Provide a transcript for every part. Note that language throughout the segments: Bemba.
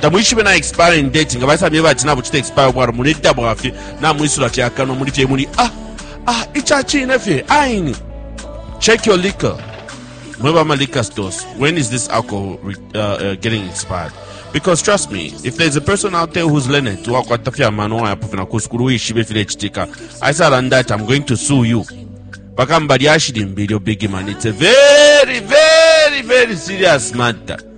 tamwishibe na expiring date nga baisa myeba ati nabuchita expire bwalo muli dita bwafye namwisula fye akanwa muli fye muli ah ah icha chine fye aini check your liquor mweba ama liquor stores when is this alcohol uh, uh, getting expired because trust me if there's a person out there who's learned to wakwata fye amano wayapo fina kusukulu wishibe file chitika i said and that i'm going to sue you bakamba lyashili mbili obigi man it's a very very very serious matter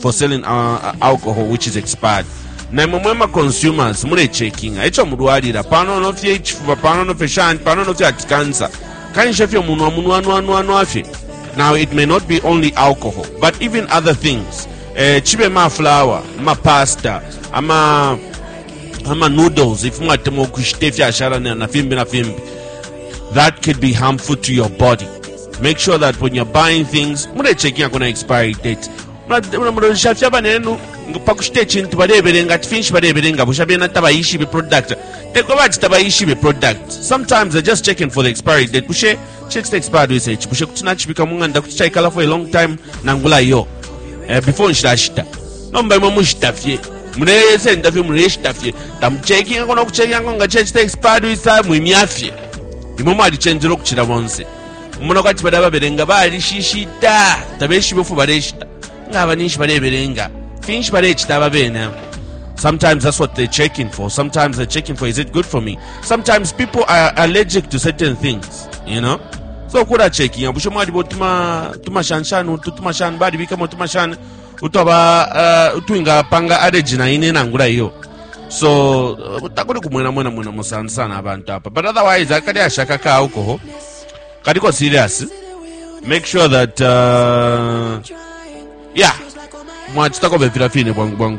for selling uh, alcohol which is expired naimwe mwe ma consumers mulecheckinga echo mulwalira panono fye ichifuba panono fye shani panono fye ati cancer kanisha fye munwa munwanwanwanwa fye now it may not be only alcohol but even other things eh, chibe maflower mapasta ama ama noodles if mwatemwa ukushita ifyashala na fimbi na fimbi that could be harmful to your body make sure that when you're buying things mulecheckinga kuna expiry date mulolesha fye abanenu pakushita ecintu balebelenga ati finshi balebelenga busha bena tabayishibe product teko bati tabayishibe product sometimes they're just checking for the expiry date bushe checks expired with echi bushe kuti nachibika mung'anda kuti chaikala for a long time nangula iyo eh, before nshilashita nomba imwe mushita fye muleyesenda fye muleyeshita fye tamuchekinga kona kuchekinga konga chechita expired with time imya fye imwe mwalicenjela ukucila bonse umona kwati bali ababelenga balishishita tabeshibe ufu baleshita ngaba ninshi balebelenga finshi balecita aba bene Sometimes that's what they're checking for. Sometimes they're checking for, is it good for me? Sometimes people are allergic to certain things, you know? So kula checking, bushe mwali bo tuma, tuma shan shan, tuma shan, bali bikamo tuma shan, utwaba uh, utwingapanga adeji na ine nangula iyo so uh, takuli kumwena mwena mwena musana sana abantu apa but otherwise akali ashaka ka alcohol kaliko serious make sure that uh, yeah mwachitako vefila fine bwangu bwangu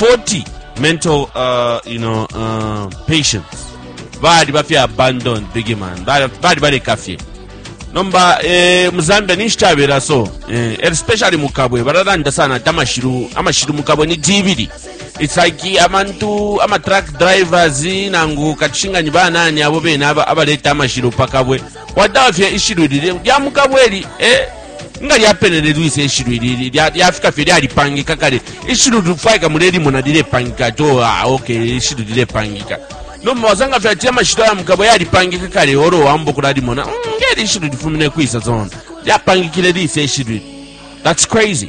40 mental uh, you know, uh, patients bali bafye abandoned big man Bali- bali baleka fye nomba eh, mu zambia ninshi kyabera so eh, especially mu kabwe bararanda sana ati amashiru amashiru mu kabwe ni jibiri it's like amantu ama truck drivers nangu katushinganyi banani abo bene aba- abaleta amashiru pa kabwe Watafye ishilu lile lya mukabweli eh nga lyapenene lwise ishilu ilili lyafika fye lyalipangika kale ishilu lifwaika mulelimona lilepangika to oh, ah, okay ishilu lilepangika nomba wasanga fye ati amashito ya mukabo yalipangika kale oro wamba okulalimona mm, ngeli ishilu lifumine kwisa zona lyapangikile lise ishilu that's crazy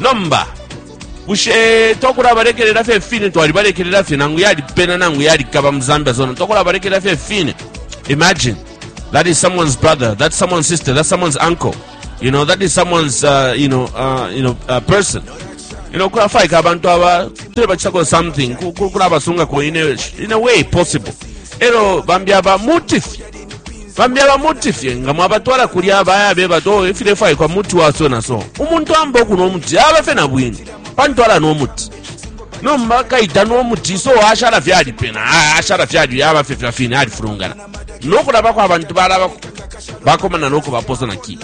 nomba bushe twakulabalekelela fye fine twalibalekelela fye nangu yalipena nangu yalikaba mu zambia zona twakulabalekelela fye fine imagine that is someone's brother that's someone's sister that's someone's uncle you know that is someone's uh, you know uh, you know uh, person you know kulafaika abantu aba tulebacitako something kulabasungako in a way possible elo bambi aba mutifye Bambi aba muti fye nga mwabatwala kulya baya beba ati oo ifilefwaikwa muti wa so na so. Umuntu amba ukunwa umuti aba fye na bwino pantu alanwa umuti. Nomba kai tanwa umuti so ashala fye alipena, ashala fye ali yaba fye fya fine alifulungana. No kulabako abantu balaba bakomana no kubaposa na ki.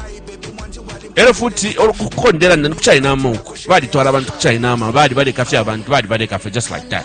Elo futi olukukondela nani kuchayinama uko. Balitwala abantu kuchayinama, bali baleka fye abantu, bali baleka fye just like that.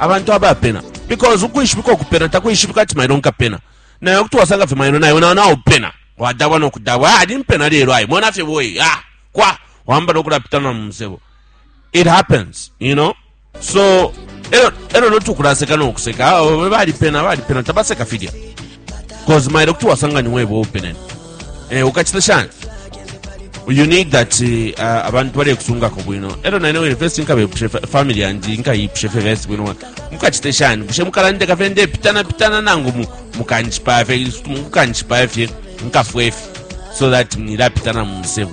abantu abapena because ukwishibika ukupena takwishibika ati mailo nkapena nayo kuti wasanga fye mailo nayo nayo nawo pena wadabwa nokudabwa ali ah, mpena lelo ayi mona fye boyi ah kwa wamba nokulapitana mu musebo it happens you know so elo elo notukulaseka nokuseka ah, balipena balipena tabaseka filya cause mailo kuti wasanga ni webo openene eh, ukachita shani you need that eh, uh, abantu balekusungako bwino elo naine wene first nkabepushe family yandi nkayipushe fe first bwino mukachite shani bushe mukalandeka fe ndepitana pitana nangu mukanjipaya fe mukanjipaya fye nkafwe fe so that mnilapitana mumusebu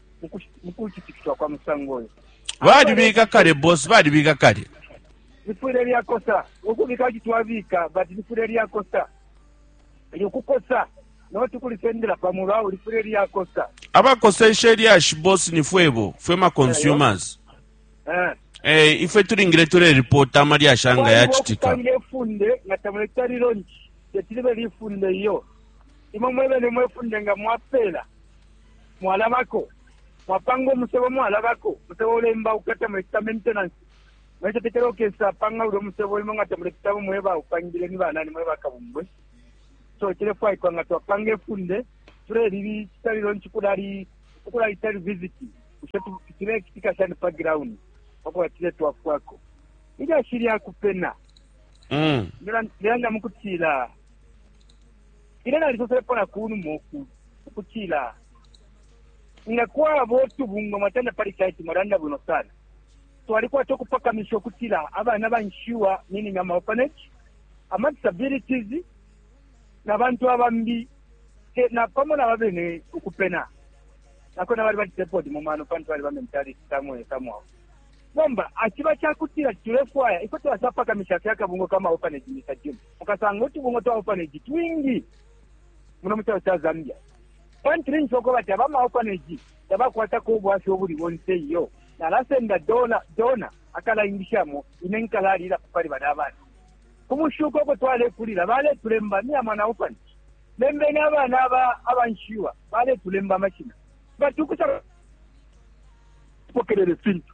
mu kutitikiswa kwa musango uyu balibika kale bosi balibika kale lifwile lyakosa ukubika kuti twabika but lifwile lyakosa likukosa noti kulisendela pamulu awo lifwile lyakosa abakoseshe lyashi bosi ni fwebo fwe ma consumers eh. eh, ifwe tulingile tuleripota amalyashi anga yacitika ifunde nga tamuletalilo nci tetilibe lifunde iyo imwe mwebene mwefunde nga mwapela mwalabako, mwapanga umusebo mwalabako, umusebo ulembauka, tamulecita maintenance, mulecetekela ukesa panga ulya umusebo limo nga tamulepitamo mwe baupangile ni banani mwe bakabungwe. So cilefwaikwa nga twapanga ifunde tulelili citalilo nci kulali ukulali tali visit ushe cilekitika shani pa ground pakuba cile twafwako ilyashi lya kupena mm. lilanga mukutila Ine nalisoselepo na ku numa ukulu, ukutila, Nga kwaba utubungwe mwatanda pali site, mwalanda bwino sana. Twalikwata ukupakamisha ukutila abana banshiwa, meaning ama orphanage, ama disabilities, na bantu abambi, te na pamo na babene ukupena. Nako na bali bati sepodi mu mano pantu bali ba mentality samwe samwa. Nomba akiba kyakutira tulefwaya ifo twasapakamisha fyakabungo kama orphanage Mr. Jim. mukasanga utubungwe twa orphanage twingi muno mu calo ca Zambia. Pantu ninshi uko bati aba ma orphanage tabakwatako ubwafya ubuli bonse iyo. Nalasenda dona dona akalaingishamo ine nkalalila pali bali abana. Ku mushuko uko twalekulila baletulemba ni amana orphanage. Lembeni abana aba abanshiwa baletulemba amashina. Batukusa pokelele fintu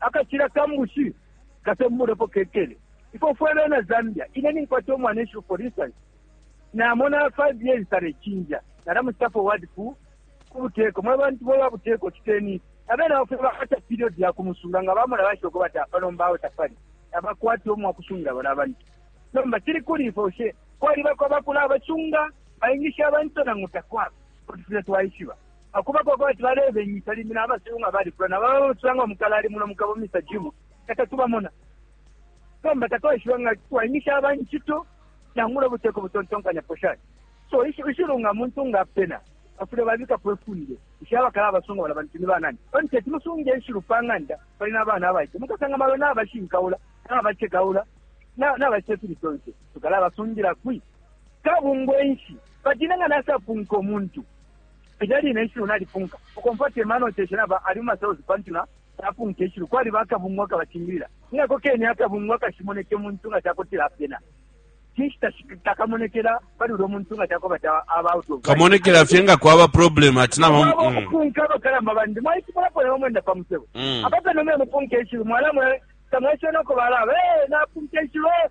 Akacila ka mbushi kasembulwepo kekele. Ifwe fwe bena Zambia, ine ninkwata umwanesu, for instance, namona 5 years talecinja, nalamucita forward ku kubuteko, mwe bantu mwe ba buteko citeni ifi. Abena bafwe bakwata period ya kumusunga, nga bamona bashoko bati apa nomba awe tapali, tabakwata umwakusungila bona abantu. Nomba cili kuli ifwe, bushe kwalibako abakulabacunga, baingisha abantu nangu takwaba? Kuti fwile twaishiba. Pa kuba kwa kwati balebengisha, limbi na basilu nga balifula na baba bacula nga mukalale muno mu kabo, Mr. Jim, nga tatubamona. Nomba tatwaishiba nga twaingisha aba incito nangula ubuteko butontonkanyapo shani. So ishilu nga muntu nga apena bafule babikapo ifunde isha bakala abasunga bala bantu ni banani pantu teti musunge ishilu pa ng'anda pali n'abana abaite mukasanga malo n'abashinkaula n'abacekaula n'abacita fili fyonse tukala abasungila kwi kabungwe nshi batine nga nasapunka omuntu Ilya line ishilu nalipunka, ukomfwa ati Emmanuel Nshenshi-Naba ali mu ma cells pantu na napunka ishilu. Kwaliba akabungwe akabacingilila. Ni ako kene akabungwe akashimoneka umuntu nga ca kutila apena. Cinshi takamonekela pali ulya umuntu nga ca kuba ati aba out of line? Kamonekela fye nga kwaba problem ati na Mwaba mm. ukupunka abakalamba bandi mwaishibapo nabo mwenda pa musebo Mm. apa pene mwe mupunka ishilu mwalamwe tamweshena uko balaba "Eh, napunka ishilu eh."